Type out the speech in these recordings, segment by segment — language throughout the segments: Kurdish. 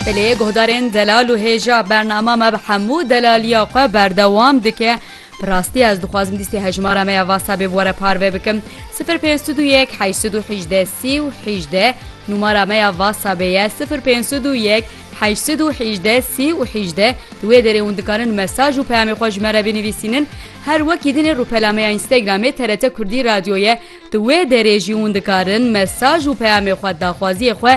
Bi lê guhdarên delal û hêja bernama me bi hemû delaliya xwe berdewam dike. Bi rastî ez dixwazim lîstê hejmara me ya Whatsappê bi we re parve bikim. Sifir pênc sed û yek heşt sed û hîjdeh sî û hîjdeh Nûmara me ya Whatsappê ye sifir pênc sed û yek heşt sed û hîjdeh sî û hîjdeh Di wê derê hûn dikarin mesaj û peyamê xwe ji me re binivîsînin. Her wekî din ê rûpela me ya Instagramê TRT Kurdî Radyoye Di wê derê jî hûn dikarin mesaj û peyamê xwe daxwaziyê xwe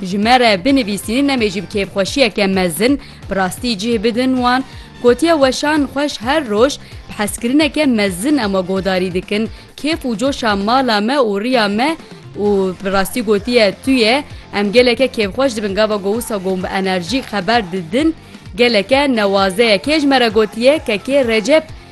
ji me re binivîsînin em ê jî bi kêfxweşiyeke mezin bi rastî cih bidin wan. Gotiye weşan xweş her roj bi hezkirineke mezin em guhdarî dikin kêf û coşa mala me û riya me û bi rastî gotiye tuye em geleke kêfxweş dibin gava ku wisa ku hûn bi enerjî xeber didin geleke newazeye kê ji me re gotiye kekê Recep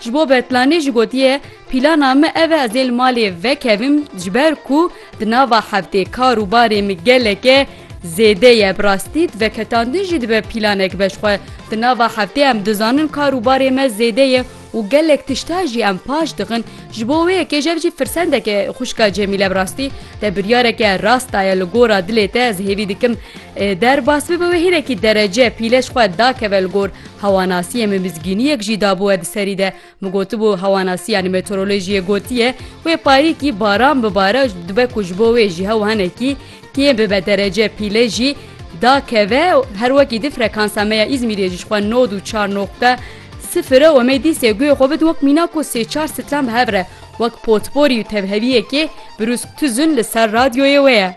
Ji bo berplanê jî gotiye, Pîlana me ev e ez ê li malê vekevim ji ber ku di nava heftê kar û barê min geleke zêde ye. Bi rastî veketandin jî dibe pîlanek be ji xwe. Di nava heftê em dizanin kar û barê me zêde ye û gelek tişta jî em paş dixin. Ji bo wê yekê jî ev jî firsendek e xwişka Cemîle bi rastî te biryareke rast daye li gora dilê te ez hêvî dikim derbas bibe wê hinekî derece pîle ji xwe dakeve li gor. Hewanasiyê min mizgîniyek jî dabû we bi serî de. Min gotibû hewanasiyan meteorolojiyê gotiye wê parîkî baran bibare û dibe ku ji bo wê ji hew hinekî kêm bibe derece pîle jî dakeve û her wekî di frekansa me ya Îzmîrê jî ji xwe nod û çar noqte sifir e û me dîsê guyê xwe bid wek mîna ku sê çar sitlan bi hev re wek potporî û tevheviyekê brûsk tuzin li ser radyoyê wê ye.